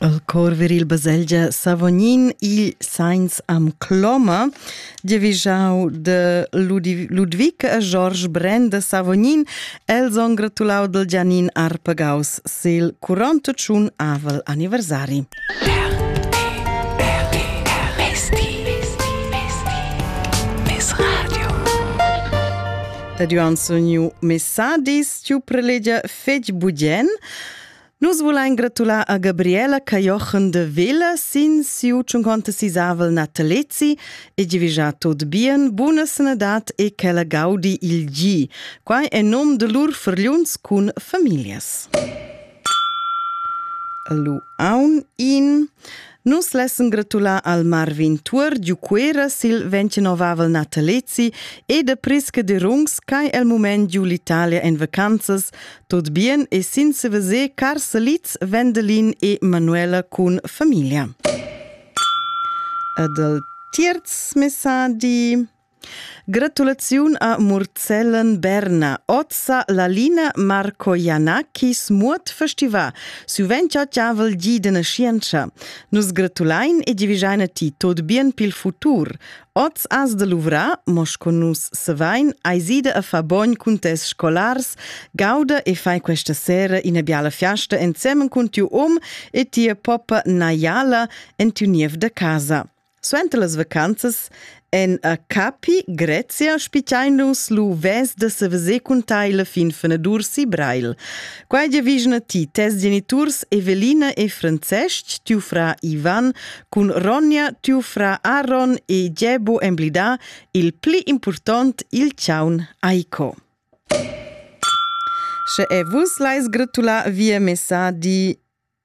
El cor viril baselgia Savognin, igl sains am cloma, dievigiau de Ludwig e George Brenn de Savognin, els on gratulau del Gianin Arpegaus sil 41 avel anniversari. Ed io an sognu messadis stiu prelegia fetg bugen. Nus vulein gratular a Gabriela Cajochen de Villa sin siu 56avel natalezi e divigiar tot bien, buna sanadad e che la gaudi il gi. Quai è nom de lur fergliuns cun familias. Lu aun in. Nus lessen gratular al Marvin Tuor giu Cuera sil ventgenovavel natalezi e de prisca de Rungs ch'ei el mument giu l'Italia en vacanzas, tot bien e sin seveser car salids Wendelin e Manuela cun familia. E dal tierz messadi Gratulaziun a Murzellen Berna. Ozza Lalina Marco Janakis muot festivà. Suvent chattavel di dena scienza. Nus gratulain e divigiaina ti tot bien pil futur. Oz as de luvra, mos con nus sevain, aisida a fa bogn cun tes scolars, gauda e fai questa sera ina biala fiasta ensemen cun tiu om e tia poppa Naiala en tiu niev de casa. Suenter las vacanzas en a Capi, Grezia, spitgein nus lu ves da seveser cun tai la fin fenadur si Breil. Quai giavigna ti tes geniturs Evelina e Francesc, tiu fra Ivan, cun Ronja, tiu fra Aaron e Gebo emblidà il pli important, il ciaun Aiko. Sche e vus leis gratular via messadi